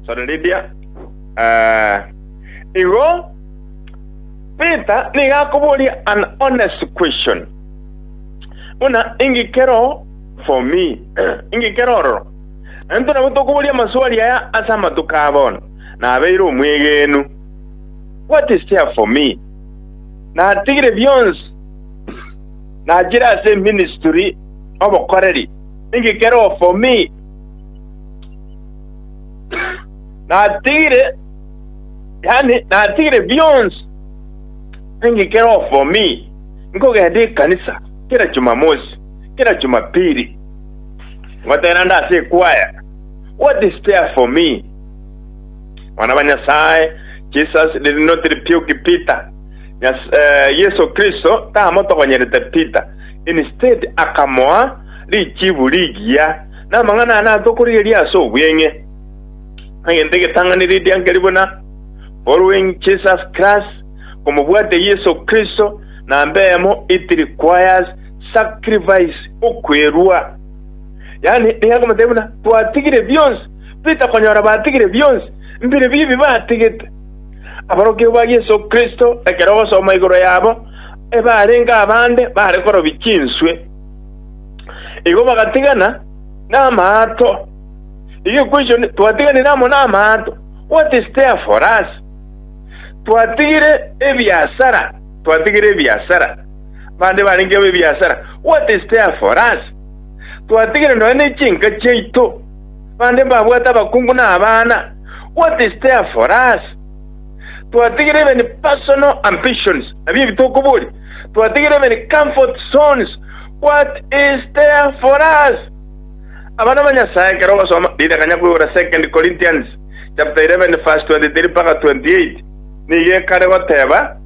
Sorry, Lydia. Eh, igo Peter nigo akoboria an honest question. Buna inki kero for me? inki kero ororo? Na nto nabo tokoboria amaswali aya ase amatuko aya bono. Nabeire omwegenu. What is there for me? Natigire bionsi. Nachire ase ministry obokoreri. Inki kero for me? natigire yani natigire bionsi ninki kero for me nkogenda ekanisa kera jumamosi kera jumapili ngotera nda ase ekwaya what is there for me mwana ba nyasaye jesus did not rebuke peter Nyas, uh, yesu kristo tamotogonyerete peter instead akamoa richibu rigiya, namang'ana aya natokorigereria ase obweng'e, egento egetang'ani ridiankeri buna, Following Jesus Christ, Komobwate Yeso Kristo, namba eyemo, it requires sacrifice, okwerua. Yaani, nigo akomotebi buna, twatigire bionsi, Peter konyora batigire bionsi, mbire bibi batigete. Aborokigwa ba Yeso Kristo, ekero ogosoma igoro yabo, ebarenge abande bare korobia chinswe, Igo bagatigana namaato. Igo equation twatiganire amo namaato. What is there for us? Twatigire ebiasara, twatigire ebiasara. Bande barenge abo ebiasara. What is there for us? Twatigire nonya ne chinka chiaito. Bande babwate abakungu na abana. What is there for us? Twatigire even personal ambitions. Abia ebitokobori. Twatigire many comfort zones, what is there for us? Abana ba Nyasaye ekero ogosoma ritang'anya koigora Second Corinthians chapter 11 verse 23 mpaka 28, nigo ekare goteba,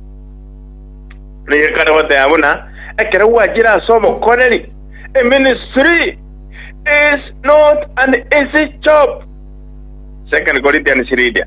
nigo ekare goteba buna ekero gwachire ase obokoreri, a ministry is not an easy job. Second Corinthians riria.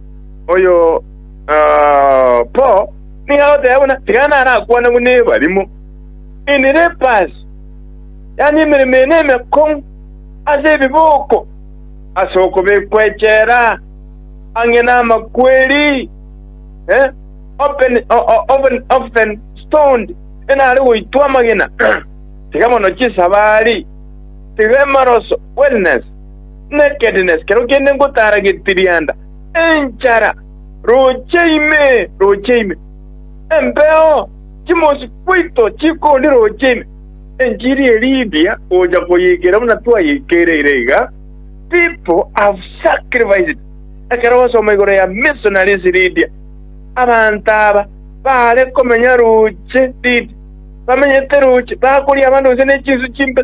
Oyo ah, Paul nigo agoteba buna tiga narakwanagwe nebarimo. Ini Lepus, yaani emeremo ene emekong'u ase ebiboko, ase okobekwa echela ang'e namakweri, eh, open, o- o- oven, often stoned, enare goitwa amagena, tiga mono chisabari, tiga emaroso, wellness, Nekednes, kero kende ngotaara getirianda, enchara, roche ime, roche ime. Embeo chimosi twaito chikondi roche ime. Enchiri e Lydia gocha koyeikera buna twayeikereire iga, people have sacrificed. Ekero osoma igoro ya Missionaries Lydia, abanto aba baare komenya roche Lydia, bamenyete roche, bakoria abanto gose nechinsu chimbe,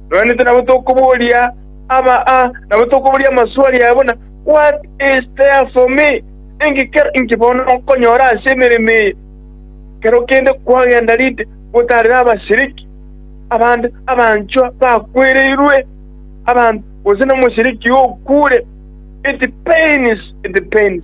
Nonya nintwe nabo tokoboria aba aa, nabo tokoboria amaswali aya buna, What is there for me? Ninki kero inki bono nkonyora ase emeremo eye? Kero kende kwagenda rinde gotaarera abasiriki, abande, abanchwa bakwereirwe, abanto, gose nomosiriki okuure. It pains, it pains.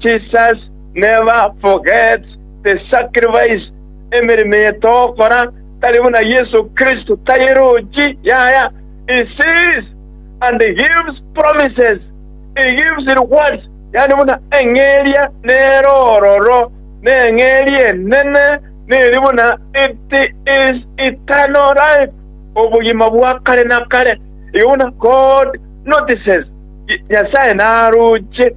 Jesus never forgets the sacrifice, emeremo eye togokora tari buna Yesu Kristo tayerochi yaya, he sees and gives promises, he gives rewards, yaani buna eng'eria nere ororo, na eng'eria enene neri buna it is eternal life, obogima bwa kare na kare. Igo buna God notices, Nyasae naroche.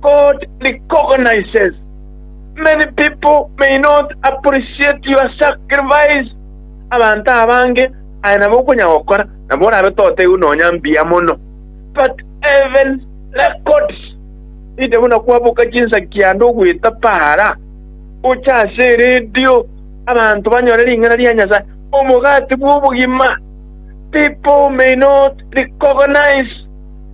God recognizes many people may not appreciate your sacrifice abanto abange aye nabo okonya gokora nabo orabe toteigwe nonya mbuya mono but heaven records inde buna kwaboka chinsaki ande ogweta para gocha ase eredio abanto banyore ring'ana ria Nyasaye omogati bw'obogima people may not recognize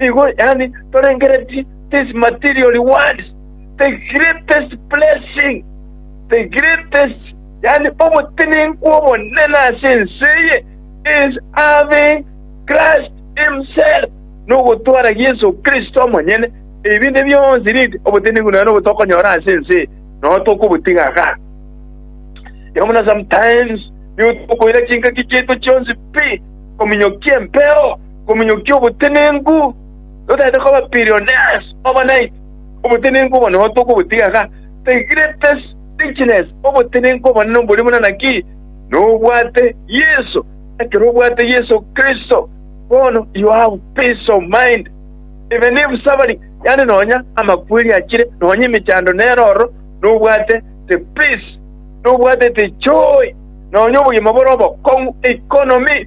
Nigo yaani torengeretie this material world, the greatest blessing, the greatest, yaani obotenenku obonene ase ense eye is having Christ himself, nogotwara Yeso Kristo omonyene. Ebinde bionsi rinde obotenenku nonya nobo tokonyora ase ense eye, nonya tokobotiga iga. Igo buna sometimes nigo tokoira chingaki chiaito chionsi pi kominyokia empeo Omonyokia obotenenku notagete koba billionaires overnight. Obotenenku obo nigo tokobotiga iga. The greatest richness, obotenenku obonene oboria buna naki? Nobwate Yeso. Ekero obwate Yeso Kristo, bono you have peace of mind. Even if suffering, yaani nonya amakweri achire, nonya emechando nero ororo, nobwate the peace, nobwate the joy, nonya obogima bore obokong'u, economy,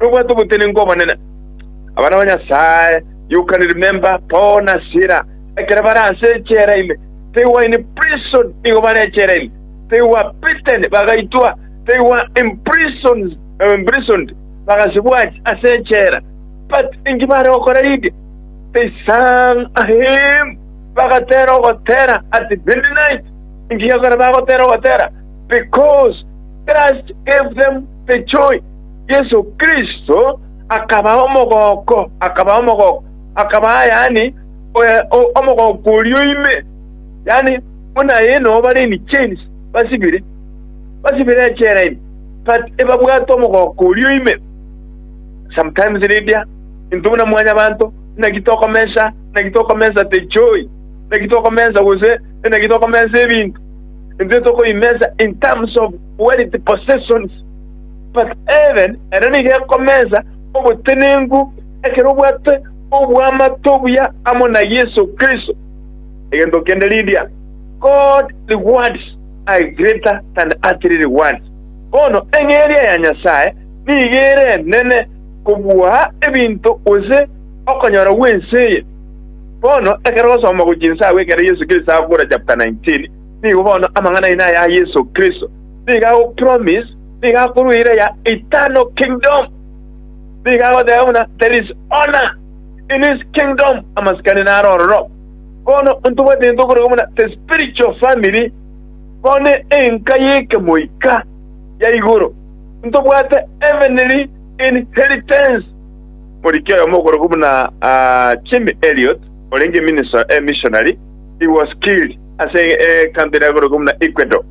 nobwate obotenenku obonene. Abana ba Nyasae Yohana remember Paul na Sila ekero bare ase echela ime they were in prison nigo bare echela ime they were beaten bagaitwa they were imprisoned, eh, imprisoned bagasibwa ach- ase echela but inki bare gokora rinde they sang a hymn bagatera ogotera at midnight inki gekora bagotera ogotera because Christ gave them the joy Yeso Kristo akabaa omogooko, akabaa omogooko, akabaa yaani omogooko oria o ime, yaani buna aye noo bare in chains basibire, basibire echela ime, but ebabwate omogooko oria o ime. Sometimes Lydia, intwe buna mwanyabanto, naki tokomensa, naki tokomensa the joy, naki tokomensa gose naki tokomensa ebinto, intwe tokobimensa in terms of wealth, possessions. Mpaka heaven ere nigo ekomensa obotenenku ekero obwate oboamato obuya amo na Yeso Kristo. Egento kende ridia, God rewards are greater than earthly rewards. Bono eng'eria ya Nyasae nigo ere enene kobua ebinto gose okonyora gw'ense eye. Bono ekero osoma gochia inse agwo ekero Yeso Kristo akogora chapter 19, nigo bono amang'ana aino aya a Yeso Kristo nigo agopromise nigo akorua eira ya eternal kingdom. Nigo agoteba buna there is honor in his kingdom, amasikani naro ororo. Bono ntobwate gento okorokwa buna the spiritual family, bono enka y'ekemoika ya igoro, ntobwate heavenly inheritance. Moriki oyomo okorokwa buna ah, Jim Elliot, orenge minister, eh, missionary, he was killed ase eh, country ere ekorokwa buna Ecuador.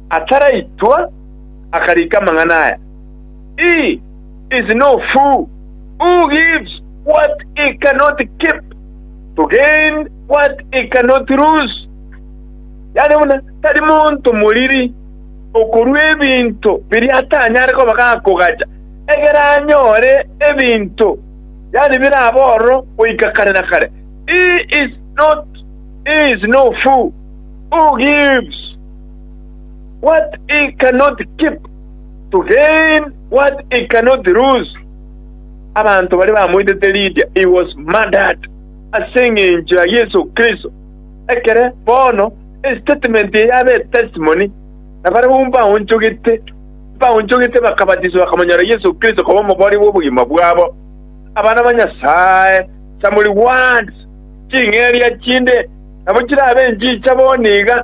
ataraitwa, akarika amang'ana aya, He is no fool who gives what he cannot keep to gain what he cannot lose. Yaani buna tari monto moriri okorua ebinto biria atanyare koba gakogacha, egere anyore ebinto, yaani birabe ororo goika kare na kare. He is not, he is no fool who gives. What he cannot keep, to gain what he cannot lose. Abanto baria bamoitete Lydia, he was murdered ase engencho ya Yeso Kristo. Ekere bono estatement eye yabe etestimony, na barabwo mbaonchogete, mbaonchogete bakabatiswa bakamonyora Yeso Kristo koba omobori bw'obogima bwabo. Abana ba Nyasae, some rewards, ching'eria chinde, nabo chirabe enchicha bono iga,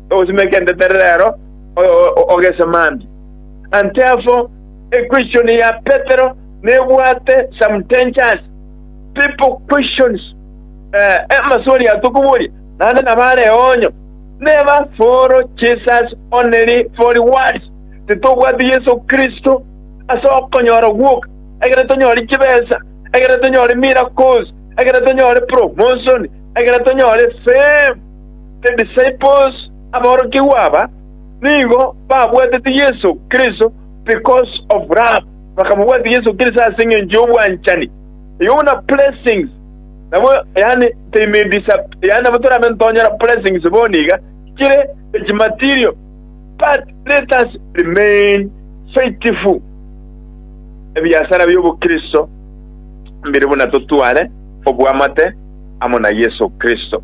ogosima egentetero rero ogesamande. Ante abwo, equestion ya Petero nebwate some dangers. People questions, amaswali aya tokoboria, naende nabo are eonyo. Neba follow Jesus only for rewards, titobwati Yeso Kristo ase okonyora gwoka, ekero tonyore chibesa, ekero tonyore miracles, ekero tonyore promotion, ekero tonyore fame. The disciples, aborokigwa aba, nigo babwatete Yeso Kristo because of love, bakamobwatia Yeso Kristo ase engencho y'obwanchani. Igo buna blessings nabo yaani they may disap- yaani nabo torabe ntonyora blessings bono iga chire eki material but let us remain faithful ebiasara bi'obokristo mbire buna totware obwamate amo na Yeso Kristo.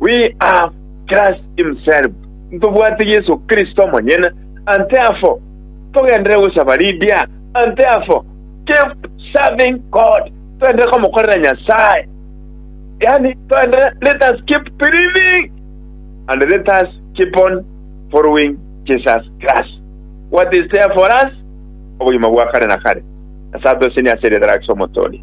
We have Christ himself, ntobwate Yeso Kristo omonyene, and therefore togenderere gosaba ridia, and therefore keep serving God, toenderere komokorera Nyasae, yaani toenderere, let us keep believing, and let us keep on following Jesus Christ. What is there for us? Obogima bwa kare na kare. Nyasae atosenie ase erieta riaye ase Omotooria.